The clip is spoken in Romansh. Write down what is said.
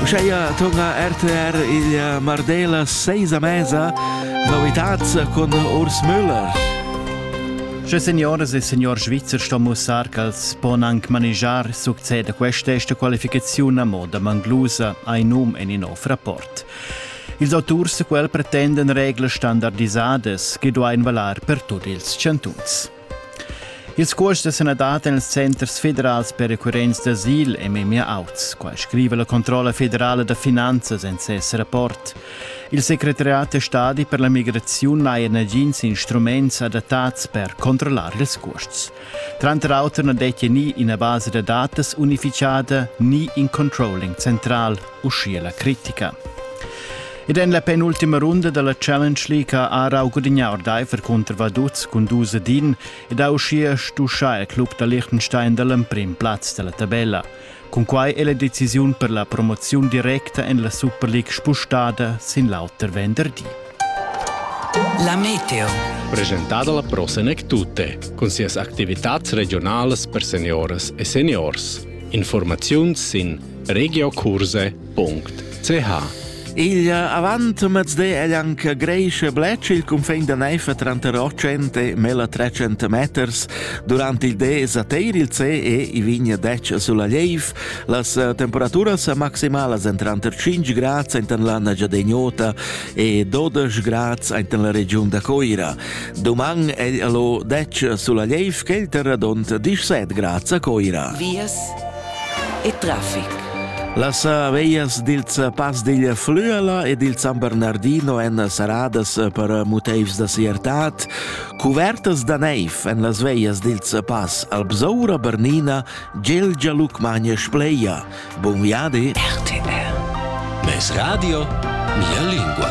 Uscheia torna RTR il Mardela seis a mesa, novitats cun Urs Müller. Sche signores e signor Svizzer sto mussar ch'els pon anc manegiar succeda questa esta qualificaziun a moda manglusa ai num en in nov rapport. Ils auturs quel pretenden reglas standardisadas che duain valar per tut ils chantuns. Il scuors da sanadad en ils centers federals per recurrents d'asil è memia auts, qua scriva la controlla federala da finanzas en ses rapport. Il secretariat da stadi per la migraziun n'ha nagins instruments adattats per controllar ils cuosts. Tranter auter na dettia ni ina basa da datas unificada ni in controlling central, uschia la critica. Ed en la penultima runda della Challenge League ha Rau gudignà ordaifer cunter Vaduz cun dus ad in ed ha uschia stuschà il club da Liechtenstein dall'emprim plaz della tabella. Cun quai è la decisiun per la promoziun directa en la Super League spostada sin l'auter venderdi. La Meteo. Presentata la Prosenek Tutte, con sias activitats regionalas per seniores e seniors. Informaziuns sin regiokurse.ch Il avant mezde è anche Grecia Bletsch il confin da Neifa tranter 800 e mela 300 meters. Durante il de sateir il ce e i vigna 10 sulla Leiv. Las eh, temperaturas maximalas en tranter 5 grad en l'anna giadegnota e 12 grad en la region da Coira. Doman è lo 10 sulla Leiv che il terradont 17 grad a Coira. Vies e traffic. Las aveglias dils pass digl Flüela e dil San Bernardino èn saradas per motivs da siertad, cuvertas da neiv en las veglias dils pass Albsaura, Bernina, Gelgia, Lucmagna e Spleia. Buon viadi! RTR. Mes radio, mia lingua.